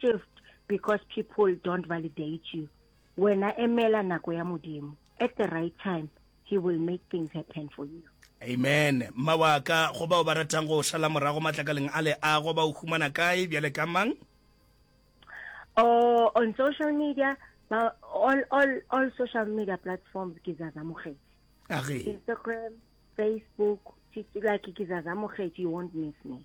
Just because people don't validate you, wena emela nako ya modimo. At the right time, he will make things happen for you. Amen. Mma wa ka, go bao ba ratang go šala morago matlakaleng a leago ba o humana kae bjale ka mang? Oh, on social media, ba, all, all, all social media platforms ke Zaza Mokgeti. Age. Instagram, Facebook, like ke Zaza Mokgeti, you won't miss me.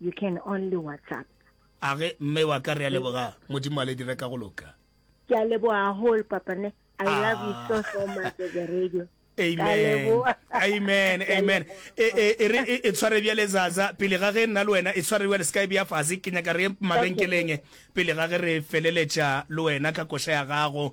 You can only WhatsApp. A ge mme wa ka re a leboga modimo a le dire ka go loka. Ke a leboga haholo papa ne. I ah. love you so so much as a radio. Amen. Amen. Amen. E, e, e re e tshware bjale zaza pele ga ge nna le wena e tshware bjale skype ya fase ke nyaka re mabenkeleng pele ga ge re feleletša le wena ka koša ya gago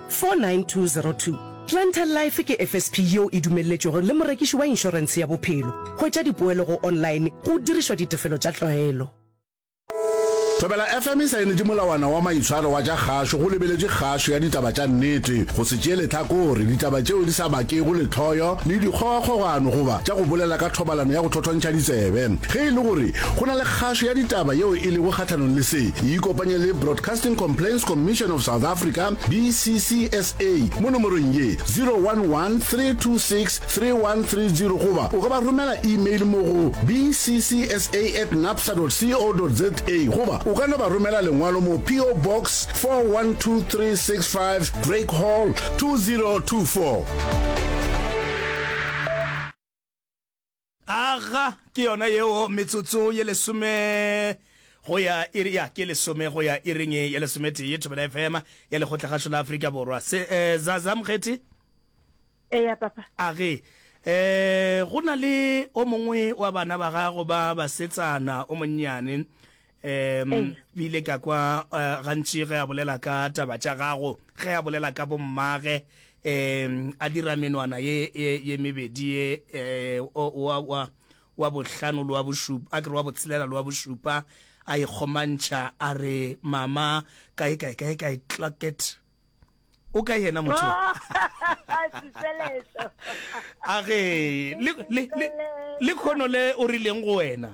49202 Planter Life ke FSP yeo e dumelletšwego le morekiši wa inšorense ya bophelo. Hwetša dipoelo go online go dirišwa ditefelo tša tlwaelo. Thobela FM e saenetše molawana wa maitshwaro wa tša kgašo go lebeletše kgašo ya ditaba tša nnete, go se tšee lehlakore, ditaba tšeo di sa bakego lehloyo le dikgogakgogano goba tša go bolela ka thobalano ya go thothontšha ditsebe. Ge e le gore go na le kgašo ya ditaba yeo e lego kgahlanong le se, e ikopanye le Broadcasting Broadcasting Complaints Commission of South Africa, BCCSA, mo nomorong ye 011 326 3130 goba o ka ba romela email mo go bccsa at napsa co za goba o ka no ba romela lengwalo mo PO Box 412365 Drake Hall 2024. Aga, ke yona yeo, metsotso ye lesome go ya iri, ya, ke lesome go ya iring ye lesometee, Thobela FM ya Lekgotlagašo la Afrika Borwa. Se, eh, Zaza, Mokgethi? Eya, Papa. Age, eh, go na le o mongwe wa bana ba gago ba basetsana o monnyane, um ile ka kwa eh, gantši ge a bolela ka taba tša gago ge a bolela ka bommage um a dira menwana ye ye mebedi ye eh, wa bohlano le wa bošupa a kere wa botshelela le wa bošupa a ikgomantšha a re mama kae kae kae kae claket o ka yena motho a re le kgono le o rileng go wena